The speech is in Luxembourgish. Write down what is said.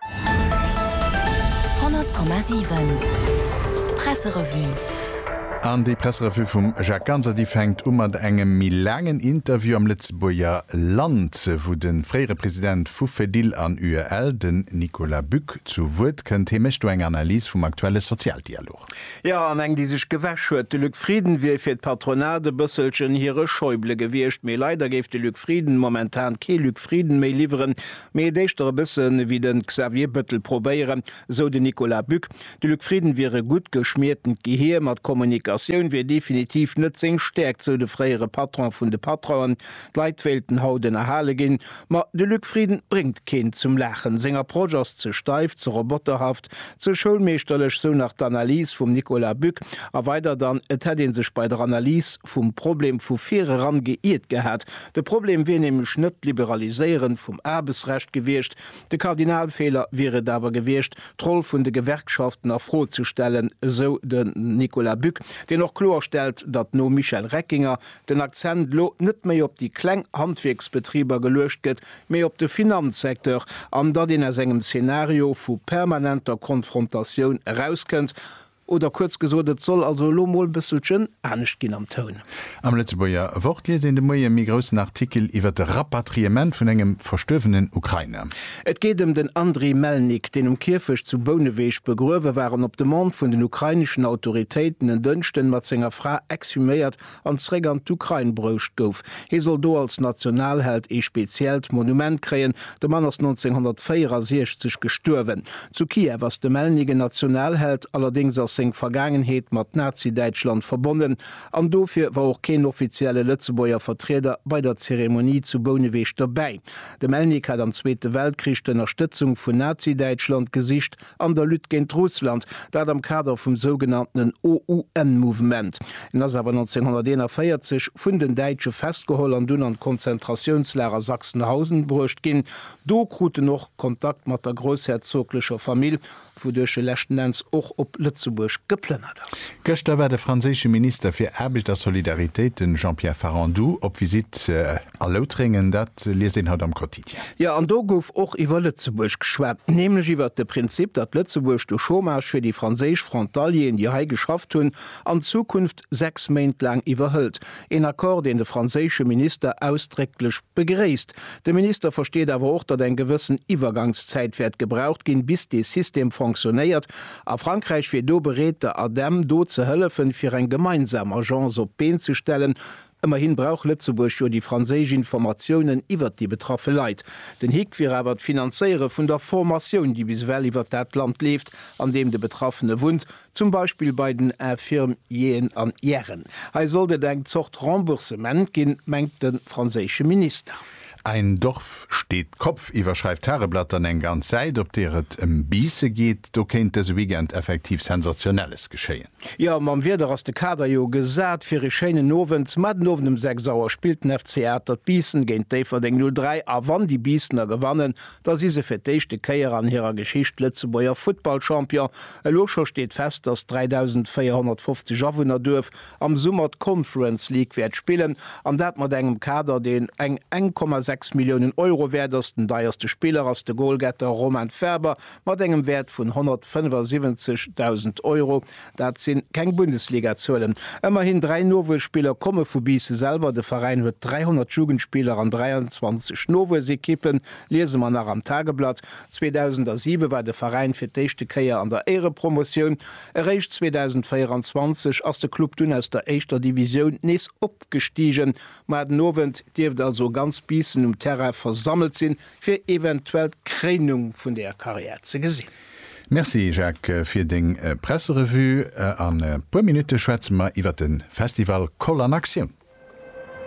100,7 Presserevue An déi Presserevue vum Jacques Ganser, déi fänkt u mat engem méi laangen Interview am Lëtzebuerger Land, wou de fréiere President vu Fedil an UEL, den Nicolas Buck, zu Wuert kënnt. Hie mécht do eng Analys vum aktuelle Sozialdialog. Jo, an eng, déi sech gewäsch huet. De Luc Frieden wier fir d'Patronat e bësselchen hire Schäuble gewiescht. Mee leider géif de Luc Frieden momentan kee Luc Frieden méi liwweren, Mee et éischter e bësse wéi de Xavier Bëttel probéieren, sou de Nicolas Buck. De Luc Frieden wier e gutt geschmiertent Gehier, ma d'Kommunikatioun wier definitiv net seng Stäerkt, sou de fréiere Patron vun de Patronen. D'Leit wéilten haut ënnerhale ginn, ma de Luc Frieden bréngt keen zum Laachen. Seng Approche ass ze steif, ze roboterhaft, ze schoulmeeschterlech, sou nach d'Analys vum Nicolas Buck. A weider dann, et hätt ee sech bei der Analys vum Problem vu vir eran geiert gehat, De Problem wier nämlech net d'Liberaliséieren vum Aarbechtsrecht gewiescht, de Kardinalfeeler wier et awer gewiescht, d'Roll vun de Gewerkschaften a Fro ze stellen, esou den Nicolas Buck, deen och kloerstellt, datt nom Michel Reckinger den Akzent elo net méi op déi kleng Handwierksbetriber geluecht gëtt, mee op de Finanzsecteur an datt een aus engem Zenario vu permanenter Konfrontatioun erauskënnt. Oder kuerz gesot, et soll also elo mol bësselchen anescht ginn am Toun. Am Lëtzebuerger Wort liest een de Moie e méi groussen Artikel iwwer de Rapatriement vun engem verstuerwenen Ukrainer. Et geet ëm den Andriy Melnik, deen um Kierfecht zu Bouneweg begruewe war an op Demande vun den ukraineschen Autoritéiten en Dënschden mat senger Fra exhuméiert an zréck an d'Ukrain broucht gouf. Hie soll do als Nationalheld ee speziellt Monument kréien. De Mann ass 1964 gestuerwen. Zu Kiew ass de Melnyk en Nationalheld, allerdéngs ass seng Vergaangenheet mat Nazi-Däitschland verbonnen an dofir war och keen offizielle Lëtzebuerger Vertrieder bei der Zeremonie zu Bouneweg dobäi. De Melnyk hat am Zweete Weltkrich d'Ënnerstëtzung vun Nazi-Däitschland gesicht. an der Lutte géint Russland, dat am Kader vum sougenanntenen OUN-Mouvement. En ass awer 1941 vun den Däitsche festgeholl an dunn an d'Konzentratiounslager Sachsenhausen bruecht ginn. Do krut en och Kontakt mat der groussherzoglecher Famill, wouduerch e leschten Enns och op Lëtzebuerg geplënnert ass. Gëschter war de franséische Minister fir Aarbecht a Solidaritéit, de Jean-Pierre Farandou, op Visitt a Loutrengen, dat liest een haut am Quotidien. Jo, an do gouf och iwwer Lëtzebuerg geschwat, nämlech iwwert de Prinzip, datt Lëtzebuerg de Chômage fir déi franséisch Frontalieren, déi hei geschafft hunn, an Zukunft sechs Méint laang iwwerhëlt. Een Accord, deen de franséische Minister ausdrécklech begréisst. De Minister versteet awer och, datt eng gewëssen Iwwergangszäit wäert gebraucht ginn, bis dee System fonctionnéiert, a Frankräich wier do bereet, der ADEM do ze hëllefen, fir eng gemeinsam Agence op d'Been ze stellen, Ëmmerhin brauch Lëtzebuerg jo déi franséisch Informatiounen iwwert déi betraffe Leit. Den Hick wier awer d'Finanzéiere vun der Formatioun, déi bis ewell iwwert dat Land leeft, an deem de Betraffene wunnt, zum Beispill bei den Infirmieren an Ieren. Hei sollt et eng Zort Remboursement ginn, mengt de franséische Minister. Ein Dorf steht Kopf iwwerschreift d'Tageblatt dann eng ganz Säit, op deer et ëm Biisse geet. Do kéint dëse Weekend effektiv Sensationelles geschéien. Jo, mam Wieder ass de Kader jo gesat fir ee schéinen Owend. Mä den Owend um 6 Auer spillt den FC Atert Biissen géint Déifferdeng 03 a wann déi Biissener gewannen, da si se fir d'éischte Kéier an hirer Geschicht Lëtzebuerger Futtballchampion. Elo scho steet fest, dass d'3.450 Awunner Duerf am Summer d'Conference League wäert spillen an dat mat engem Kader, deen eng 1,6 Milliounen Euro wäert ass. Den deierste Spiller ass de Golgetter Romain Faber mat engem Wäert vun 175.000 Euro. Dat si keng Bundesliga-Zuelen. Ëmmerhin dräi Nowuesspiller komme vu Biisse selwer. De Veräin huet 300 Jugendspiller an 23 Nowuessekippen, liese mer nach am Tageblatt. 2007 war de Veräin fir d'éischte Kéier an der Éirepromotioun. Eréischt 2024 ass de Club dunn aus der éischter Divisioun nees opgestigen. Ma den Owend dierft also ganz Biissen um Terrain versammelt sinn, fir eventuell d'Kréinung vun der Karriär ze gesinn. Merci Jacques fir deng Presserevue. An e puer Minutte schwätze mer iwwer de Festival Koll an Aktioun.